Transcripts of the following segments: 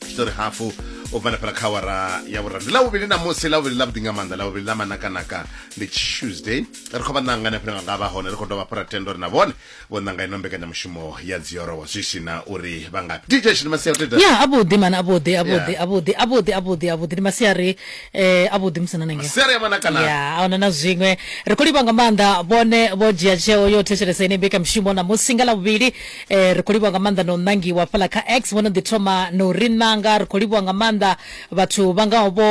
tshitori hafu u bva nafhala kha wara ya vhuraru ndi ḽavhuvhili na musi ḽavhuvhili ḽavhuḓi nga maanḓa ḽavhuvhili ḽa manakanaka ndi tuesday ri khou vha ṋanga na fhiranga nga vha hone ri khou dovha fhura tendo ri na vhone vho ṋanga ino mbekanyamushumo ya dziorowa zwi si na uri vha ngafhi dj shini masia uteta ya avhuḓi mana avhuḓi avhuḓi Yeah. avhuḓi avhuḓi avhuḓi avhuḓi ndi masiari eh, avhuḓi musi na nangeo siari ya manakanaka ya ahuna na zwiṅwe ri khou livha nga maanḓa vhone vho dzhia tsheo yo thetshelesa ine mbekamishumo na musi nga ḽavhuvhili Eh, ri khou livhuwa nga maanḓa na u ṋangiwa fhaḽa kha x vho no ḓi thoma na u ri ṋanga ri khou livhuwa nga maanḓa vhathu vha ngaho vho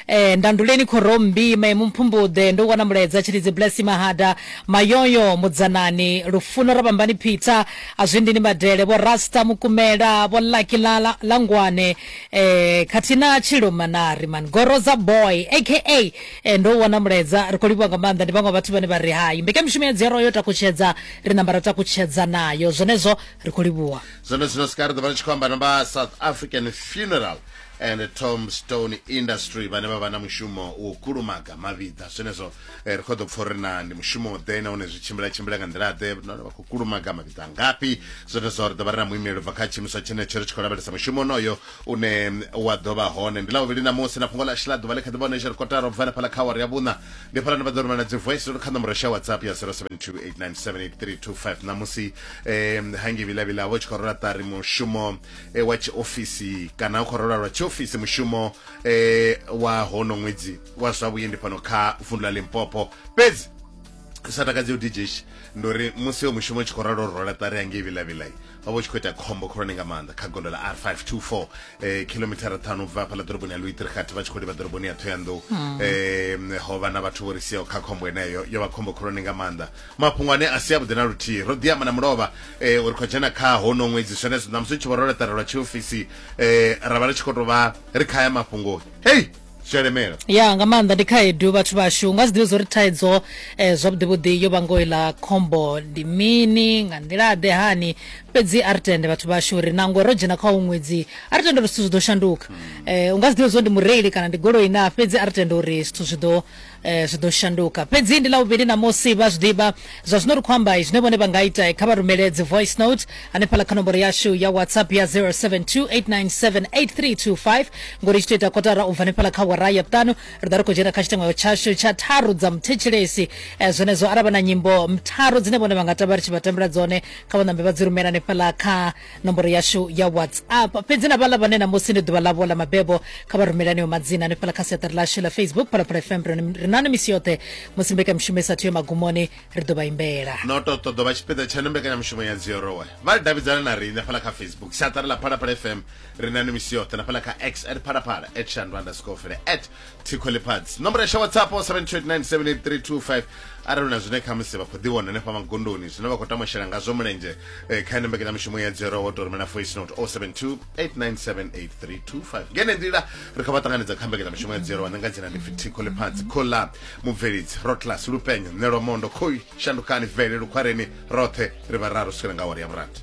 eh, ndanduleni khorommbi maemu mphumbuḓe ndo wana mulaedza tshilidzi blessy mahada mayoyo mudzanani lufuno rabambani peter azwindini madele vho rasta mukumela vho lucky la, la, la ngwane eh, khathihi na tshilo manari man goroza boy aka eh, ndo wana mulaedza ri khou livhuwa nga maanḓa ndi vhaṅwe vhathu vhane vha ri hai mbekanyamushumo ya dziyarwa yo takutshedza ri namba ra takutshedza nayo zwenezwo ri khou livhuwa zwone zwino sika ri ḓo vha ri tshi khou amba na vha south african funeral and tombstone industry vhane vha vha na mushumo wo kulumaga mavhiḓa zwenezwo eh, ri khou ḓo pfa uri na ndi mushumo ḓe nahone zwi tshimbila tshimbila nga nḓila ḓe nahone vha khou kulumaga mavhiḓa ngafhi zwenezwo ri ḓo vha ri na muimeli bva kha tshiimiswa tshenetsho ri tshi khou lavhelesa mushumo onoyo une wa ḓo vha hone ndi ḽavhuvhili ṋamusi na fhungo ḽashu ḽa ḓuvha ḽi kha ḓi vha hone zwi ri kotara u bva henefhaḽa kha awara ya vhuṋa ndi hafhaḽa ni vha ḓo rumela dzi voice note kha ṋomboro sha whatsapp ya 0728978325 ṋamusi um hangi vhilavhila vho tshi khou rola ṱari mushumo eh, wa tshiofisi kana u khou rola lwa tshiofisi mushumo eh, wa hono ṅwedzi wa zwa vhuendi fhano kha vundu ḽa limpopo fhedzi sa takadzi u dj ndi uri musi yo mushumo u tshi khou ralo rola ṱari hangi vhilavhilai vha vho tshi khou ita khombo khulwane nga maanḓa kha gondo la r 524 eh, khilomithara ṱhanu bva hafhaḽa ḓoroboni ya luitirikhathi vha tshi khou livha ḓoroboni ya thoyandou hmm. eh, ho vha na vhathu vho ri siaho kha khombo eneyo yo vha khombo khulwane nga maanḓa mafhungo ane a si avhuḓi na luthihi ro ḓiamba na mulovha eh, uri khou dzhena kha hono ṅwedzi zwenezwo ṋamusi u tshi vho ro laṱarelwa tshiofisi eh, ra vha ri tshi khou tou vha ri khaya mafhungoni hei tshelemela ya nga maanḓa ndi khaedu vhathu vhashu nga zwiḓivhi zwo ri thaidzo um eh, zwavhuḓi vhuḓi yo vhango iḽa khombo ndi mini nga nḓila ḓe hani fhedzi a ri tende vhathu vhashu uri nango ro dzhena kha u ṅwedzi a ri tende uri zwithu zwi ḓo shanduka um u nga zwiḓivhi zwo ndi mureili kana ndi goloi na fhedzi a ri tende uri zwithu zwi ḓo eh, zwi ḓo shanduka fhedzi ndi ḽavhuvhili ṋamusi vha zwi ḓivha zwa zwino ri khou amba zwine vhone vha nga ita kha vha rumele dzi voice note hanefhala kha nomboro yashu ya whatsapp ya 0728978325 ngori tshi tou ita kotara u bva hanefhala kha wara ya vhuṱanu ri ḓa ri khou dzhena kha tshitengo tshashu tsha tharu dza muthetshelesi eh, zwenezwo arali vha na nyimbo tharu dzine vhone vha nga tamba ri tshi vha tambela dzone kha vha ṋambe vha dzi rumela hanefhala kha nomboro yashu ya whatsapp fhedzi na vhala vhane namusi ndi ḓuvha ḽavho ḽa mabebo kha vha rumele aneyo madzina hanefhala kha siaṱari ḽashu ḽa facebook phalaphala fm ri nani misi yoṱhe musi mbekamishumo isathu ya magumoni ri ḓo vha imbela no to ṱoḓo vha tshipiḓa tshaṋu mbekanyamushumo ya dziorowe vha davhidzana na riṋe fhala kha facebook siaṱari ḽa phalaphala fm ri nani misi yoṱhe na fhala kha x at phalaphala at shandu underscore fele at thikho ḽifhadzi nomboro yasha whatsapp 7297832 arali hu na zwine khamusi vha khou ḓivhona hanefha magondoni zwine vha khou tama u shela ngazwo mulenzhe eh, kha ene mbekanyamushumo ya dzero wo tou rumela voice note 0728978325 ngene nḓila ri khou vha ṱanganedza kha mbekanyamushumo ya dzero wa nanga dzina ndi pfi thikho ḽifhadzi khola mubvelidzi rotlas lupenyo nelwa mondo khoi shandukani vele lukhwareni roṱhe ri vhararu swikela nga awara ya vhurathi